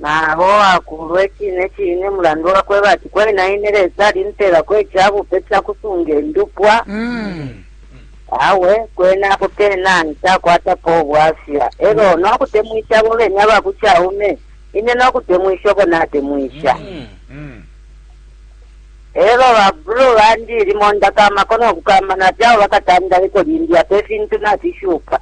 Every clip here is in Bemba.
Nabo akulwe cine cine mulandu wakweba ati kwena ine Lesa alimpelako icabupe cakusunga indupwa. Mm. Awe kwena apo pena ntakwatapo ubwafya elo mm. nokutemwisha abo bene abakucaume ine nokutemwisha obo natemwisha mm. mm. elo babulu bandi limo ndakama kono kukamana fyabo bakatandaliko limbi apo ifintu nafishuka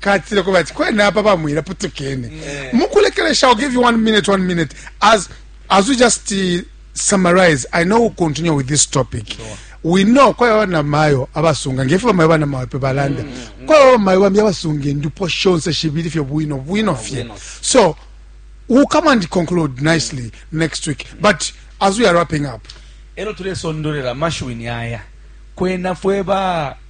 katile kuba ati kwena apa bamwira putukene yeah. mukulekeresha i'll give you one minute one minute as as we just uh, summarize i know we'll continue with this topic sure. we know kwayo bana mayo abasunga ngefe bamayo bana mayo pe balanda mm, mm. kwayo bamayo bambi abasunga endupo shonse shibiri fye bwino bwino fye so we'll come and conclude nicely mm. next week but as we are wrapping up ero tulesondolera mashuini aya kwena fwe ba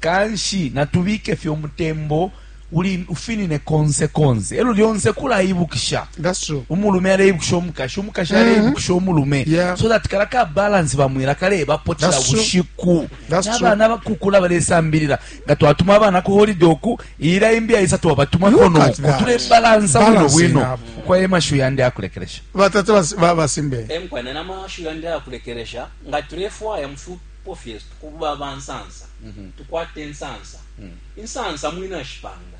Kanshi natubike fye umutembo uli ufinine konse konse. Elo lyonse kulaibukisha. That's true. Umulume aleibukisha umukashi, umukashi mm. aleibukisha umulume. Yeah. So that kala ka balance bamwira kale bapotela bushiku. Nabana bakukula balesambilira. Nga twatuma abana ku holiday oku ira imbi aisa twabatuma kono oku. Tule balance bwino bwino. Kwa ema shu yandi akulekeresha. Batatu basimbe. Emkwa na nama shu yandi akulekeresha. Nga tulefwa ya mfupi Apo fye tuba aba nsansa, tukwata insansa. Insansa mwina ashipanga.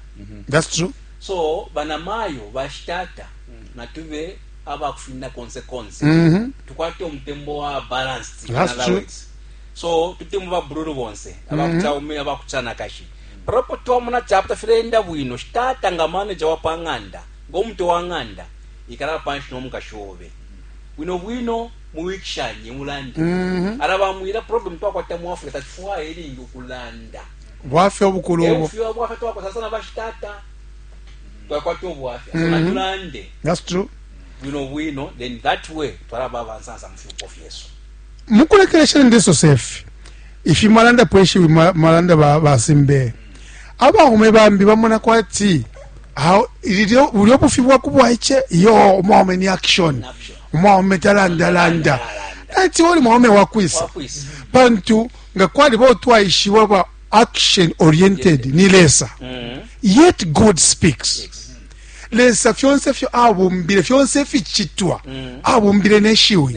That's true. So banamayo, bashitata, natube aba kufina konse konse. Mm -hmm. Tukwate umutembo wa balanced. That's true. Words. So tutemu ba bruru bonse, aba mm -hmm. kuchaume, aba kuchana kashi. Propo tuwa muna chapta filenda wino, shitata nga manager wa panganda, gomte wa nganda, ikala panshi no mkashobe. bwino bwino muwikishanye mulande mm -hmm. alabamwila problem twakwata mu africa tatufwaya ilingi ukulanda bwafya obukulu obo ebufya bwafya twakwata sana bashitata twakwata obwafya mm -hmm. tulande that's true bwino bwino then that way twalaba abansansa mu fyupo fyesu mukulekelesha ndesosefi ifi mwalanda pweshiwi mwalanda basimbe ba Abaume bambi bamona kwati bulyo bufi bwa ku bwaice iyo umwaume ni action umwaume talandalanda ati oli mwaume wakwisa pantu nga kwaliba otwaishiwa ba action oriented ni lesa mm-hmm. yet god speaks lesa fyonse fyo abumbile fyonse fichitwa mm-hmm. abumbile neshiwi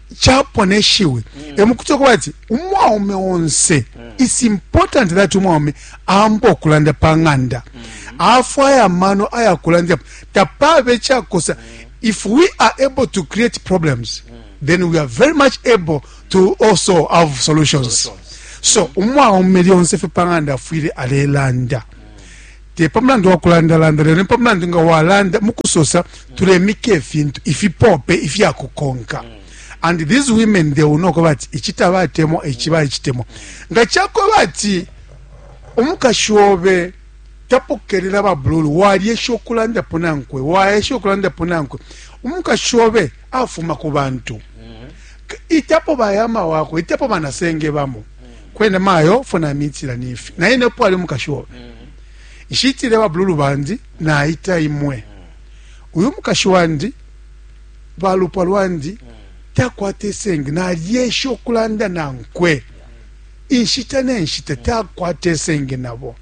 chapwa ne shiwi mm. emukuti okuba ati umwaume onse mm. its important that umwaume amba okulanda pa ng'anda mm. afwaya amano ayakulandapo tapabe ekyakosa mm. if we are able to create problems mm. then we are very much able to also have solutions, solutions. so umwaume lyonse fe pa ng'anda afwile alelanda mm. te pa mulandu wa kulandalanda lelo ni pa mulandu nga walanda mu kusosa tulemika ifintu ifipope ifya kukonka and these women they will know ko bati ici tabatemwa ici baicitemwa nga cakwe bati umukashi obe tapokelela babululu walyesha okulandapo nankwe waesha okulandapo nankwe umukashi obe afuma ku bantu mm-hmm. itapo bayama wakwe itapo banasenge bamo kwene mayo fo namitila nifi naye nepo ali umukashi obe nshitile babululu bandi naita imwe uyu mukashi wandi balupwa lwandi takwata esenge nalyesha okulanda nankwe inshita nenshita takwata esenge nabo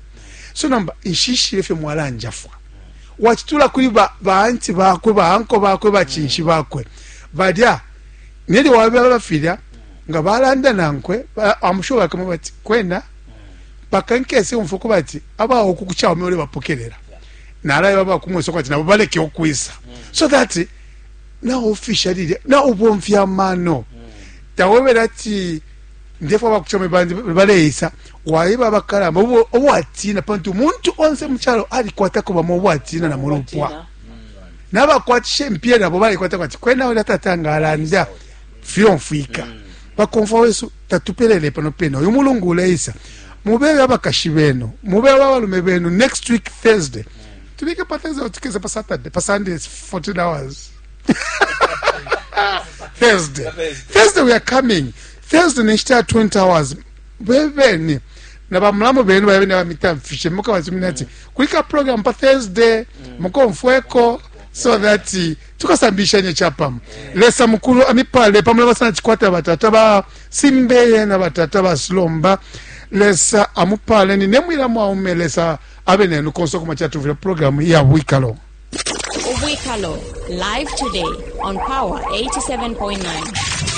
so nomba nshishile fye mwalanjafwa wacitula kuli baanti bakwe baanko bakwe bacinshi bakwe balya Nelyo wabeba filya nga balanda nankwe, I'm sure bakamweba ati kwena mpaka nkese umfwa ukuba ati aba uku ku Chaume ulebapokelela nalayeba aba ku Mweso ati nabo baleke ukwisa so that na official lilya na ubomfya amano tawebela ati ndefwa aba ku Chaume bandi baleisa wayeba abakalamba obwatina pantu umuntu onse mu calo alikwatako bamo obwatina na mulupwa nabakwatisha impiya nabo balikwata kwati kwena ulya tata nga alanda fyomfwika mm. bakomfwa wesu tatupelele pano pena uyu mulungu uleisa mubebe abakashi benu mubebe abalume benu next week thursday tubike pa thursday tukeze pa saturday pa sunday 14 hours thursday thursday we are coming thursday nenshita ya 20 hours bebeni na bamulamu benu babe nabamitamfishe mukabasumina ati kulika program pa thursday mm. mukomfweko so that eh, tukasambishanye chapamo lesa mukulu amipale pamula basana chikwata batata ba simbeye na batata ba silomba lesa amupale ni nemwila mwaume lesa abe nenu konse okuma chatuvile program ya bwikalo ubwikalo live today on power 87.9